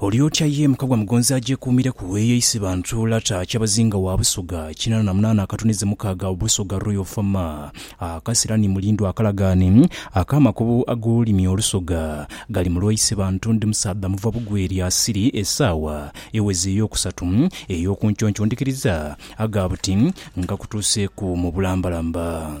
Oli otya ye Mukagwa Mugonzi agyekuumireku eyo eisi ba Ntuula ta Kyabazinga wa Busoga kinaana na munaana akatuneze mukaaga Busoga Royal Fama Akasira ni Mulindwa Akalagaane ak'amakubo ag'olulimi Olusoga Gali mulwa ise bantu Ndi musaadha muva Bugwe lya Siri Esaawa eweze ey'okusatu ey'okunkyonkyondikiriza aga buti Nkakutuuseeku mu bulambalamba.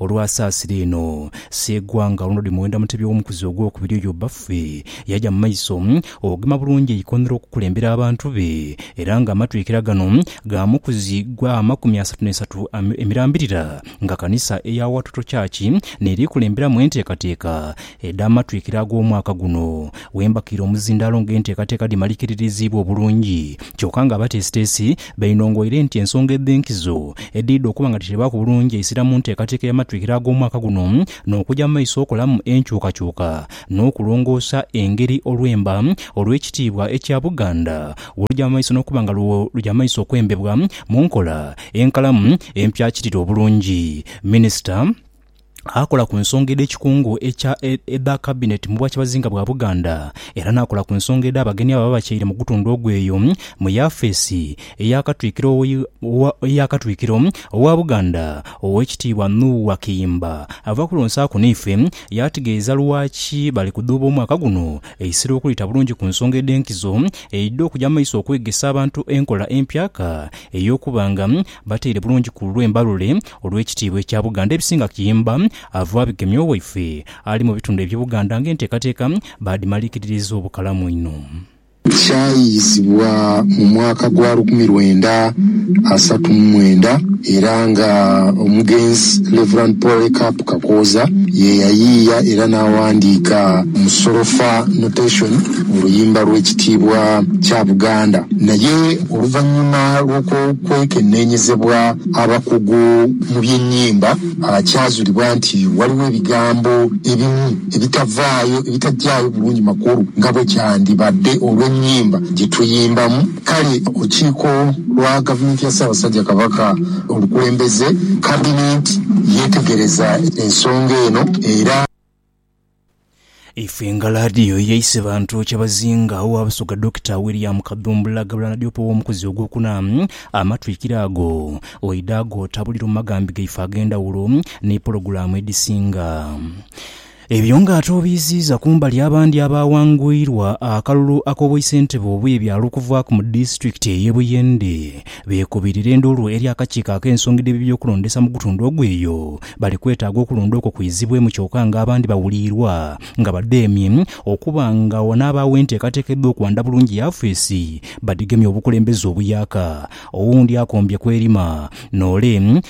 Olwa saasira eno Seegwa nga alonda odi Muwenda Mutebi ow'omukuzi ogw'okubiri oyo bbaffe, yaja mu maiso okugema bulungi eikonhiro okukulembera abantu be, era nga amatwikira gano ga mukuzi gwa amakumi asatu n'esatu emirambirira nga kanisa eya Watoto Church n'eri kulemberamu enteekateeka edh'amatwikira ag'omwaka guno wembakiire omuzindaalo nga enteekateeka dhimalikiririziibwa obulungi kyoka nga abateesiteesi Bainhongoire nti ensonga edh'enkizo edhidha okuba nga dhiteebwaku bulungi eisira mu nteekateeka y'amatwikiro ag'omwaka guno n'okuja mu maiso okolamu enkyukakyuka n'okulongoosa engeri olwemba olw'ekitiibwa ekya Buganda bw'oluja mu maiso n'okuba nga lwo luja mu maiso okwembebwa mu nkola enkalamu empyakirire obulungi. Minisita. Akola ku nsonga edh'ekikungo ekya edha Kabineti mu Bwakyabazinga bwa Buganda era n'akola ku nsonga edh'abagenyi ababa batyaire mu gutundhu ogwo eyo mu yafeesi eya Katwikiro eya Katwikiro owa Buganda, Owekitiibwa Nuuwa Kiyimba ava kulonsaku naife yaategeeza lwaki bali kudhuuba omwaka guno eisiro okulita bulungi ku nsonga edh'enkizo eidha okugya mu maiso okwegesa abantu enkola empyaka ey'okuba nga Bateire bulungi ku lulwe Mbalule olw'ekitiibwa ekya Buganda ebisinga Kiyimba ava abigemye owaife ali mu bitundu eby'e Buganda ng'enteekateeka baadhimaliikiririza obukalamu inho. Kyayiyizibwa mu mwaka gwa lukumi lwenda asatu mu mwenda era nga omugenzi Rev. Polycarp Kakooza ye yayiiya era n'awandiika mu solofa, notation, oluyimba lw'ekitiibwa kya Buganda. Naye Oluvannyuma lw'okwekenneenyezebwa abakugu mu by'ennyimba, kyazulibwa nti waliwo ebigambo ebimu ebitavaayo, ebitagyayo bulungi makulu nga bwe kyandibadde olw'ennyimba gye tuyimbamu. Kale olukiiko lwa Gavumenti ya Ssaabasajja Kabaka olukulembeze, Kabinenti, yeetegereza ensonga eno era. Ife nga laadiyo eyaise bantu kyabazinga owa Busoga Dokita William Kadhumbula Gabula Nadiope ow'omukuzi ogwokuna, amatwikiro ago oidha agootabulira mu maghambi gaife ag'endhawulo ni pologulaamu edhisinga. Ebyo nga ate obiiziiza kumbali abandi abaawanguyirwa akalulu ak'obwaisentebe obw'ebyalo okuvaaku mu disitulikiti ey'e Buyende beekubirira endhoolo eri akakiiko ak'ensonga dh'ebibyokulondesa mu gutundu ogwo eyo Bali kwetaaga okulonda okwo kwizibwemu kyoka nga abandi bawuliirwa nga badheemye okuba nga wanaabaagho enteekateeka edh'okwanda bulungi yafeesi badhigemye obukulembeze obuyaaka. Owundi akombye ku erima n'ole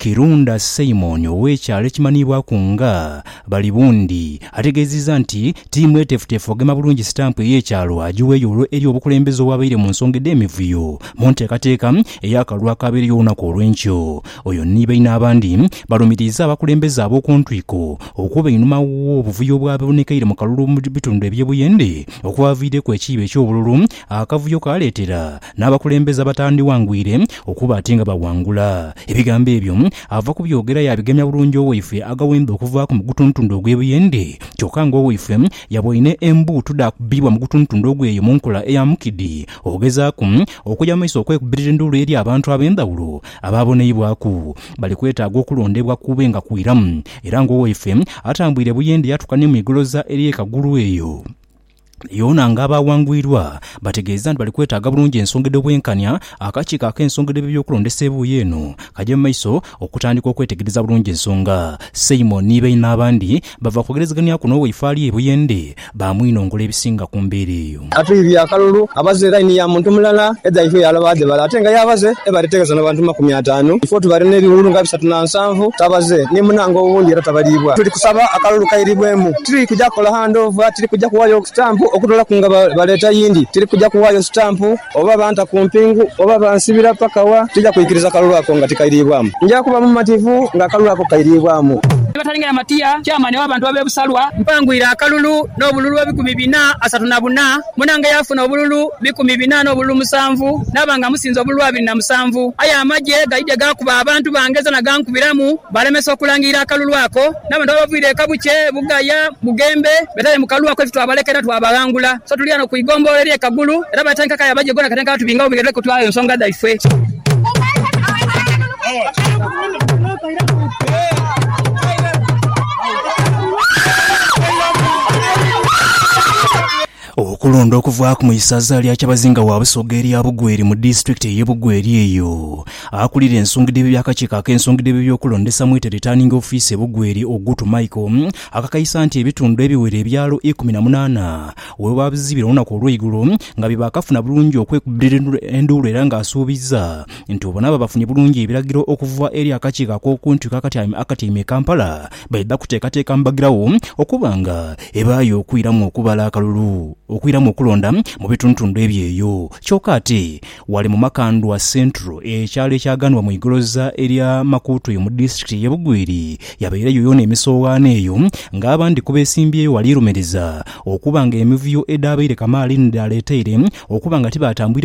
Kirunda Simon ow'ekyalo ekimanhiibwaku nga Balibundi ategeezizza nti ti mweteefuteefu ogema bulungi sitampu ey'ekyalo agiweeyo olwo eri obukulembeze obwabaire mu nsonga edh'emivuyo mu nteekateeka ey'akalulu akaabeereyo olunaku olw'enkyo Oyo ni baine abandi balumiriiza abakulembeze ab'oku ntwiko okuba einhuma w'obuvuyo obwaboonekeire mu kalulu mu bitundu eby'e Buyende okwaviireku ekiibo eky'obululu akavuyo kaaleetera n'abakulembeze abatandhiwangwire okuba ati nga bawangula. Ebigambo ebyo ava kubyogera yaabigemya bulungi owaifwe Agawemba okuvaaku mu gutuntundu ogw'e Buyende kyokka nga owaifwe yaboine embuutu dha kubbiibwa mu gutuntundu ogwo eyo mu nkola eya mukidi ogezaaku okuya mu maiso okwekubbirira enduulu eri abantu ab'endhawulo Abaaboneibwaku bali kwetaaga okulondebwa kube nga kwiramu, era ng'owaife atambwire buyende yaatuka ni mu igoloza eri e Kagulu eyo yoona ng'abaawangwirwa, bategeeza nti bali kwetaaga bulungi ensonga edh'obwenkanya. Akakiiko ak'ensonga dh'eby'okulondesa ebuuyi eno kaja mu maiso okutandika okwetegereza bulungi ensonga. Simon ni baine abandi bava kwogerezeganyaku n'owaife ali e Buyende baamwinongula ebisinga ku mbeera eyo. Atwidhie akalulu abaze laini ya muntu mulala edhaifo yaalaba dhe bali ate nga yaabaze e bali etegeeza n'abantu mu makumi ataanu. Ifo tubali n'ebiwuulu nga bisatu na nsanvu tabaze, ni munange owundi era tabaliibwa. Tuli kusaba akalulu kairiibwemu. Tiri kuja kukola handoova, tiri kuja kuwaayo sitampu okutoolaku nga baleeta yindi, tiri kuja kuwaayo sitampu oba banta ku mpingu oba bansibira paka wa, tija kwikiriza kalulu ako nga tikairiibwamu. Nja kuba mumativu ng'akalulu ako kairiibwamu. batalingana matiya, chairman w'abantu ab'ebusalwa. Mpanguire akalulu n'obululu ebikumi bina asatu na buna, munange yaafuna obululu bikumi bina n'obululu musanvu, naaba nga musinze obululu abiri na musanvu. Aye amagye gaidhye gaakuba abantu bange zona gankubiramu, baalemesa okulangirira akalulu ako. N'abantu abavaire e Kabukye, Bugaya, Bugembe beetaire mu kalulu ako ife twabalekera twabaghangula. So tuli ghano ku igombolola erye Kagulu era batandika kaya abagye gona katandika batubingawo bwire kutwala ensonga dhaife. Okulonda okuvaaku mu isaza lya Kyabazinga wa Busoga erya Bugweri mu disitulikiti eye Bugweri eyo. Akulira ensonga dh'ebyo by'akakiiko ak'ensonga dh'ebyo by'okulondesa mwita Returning Office e Bugweri Ogutu Michael akakaisa nti ebitundu ebiwera ebyalo ikumi na munaana webabizibira olunaku olweigulo nga bye bakafuna bulungi okwekubira enduulu era nga asuubizza nti obonaba bafunye bulungi ebiragiro okuva eri akakiiko ak'okuntiko akatyaime akatyaime e Kampala baidha kuteekateeka mbagirawo okuba nga ebaayo okwiramu okubala akalulu okwiramu okulonda mu bitundutundu ebyo eyo kyoka ate wali mu Makandwa Central ekyalo ekyaghanwa mu igoloza erya Makuutwe mu disitulikiti ye Bugwiri yabaireyo yoona emisoghaano eyo nga abandi ku besimbyeyo wali lumiriza okuba nga emivuyo edhaabaire kamaali ni dhaaleteire okuba nga tibaatambwire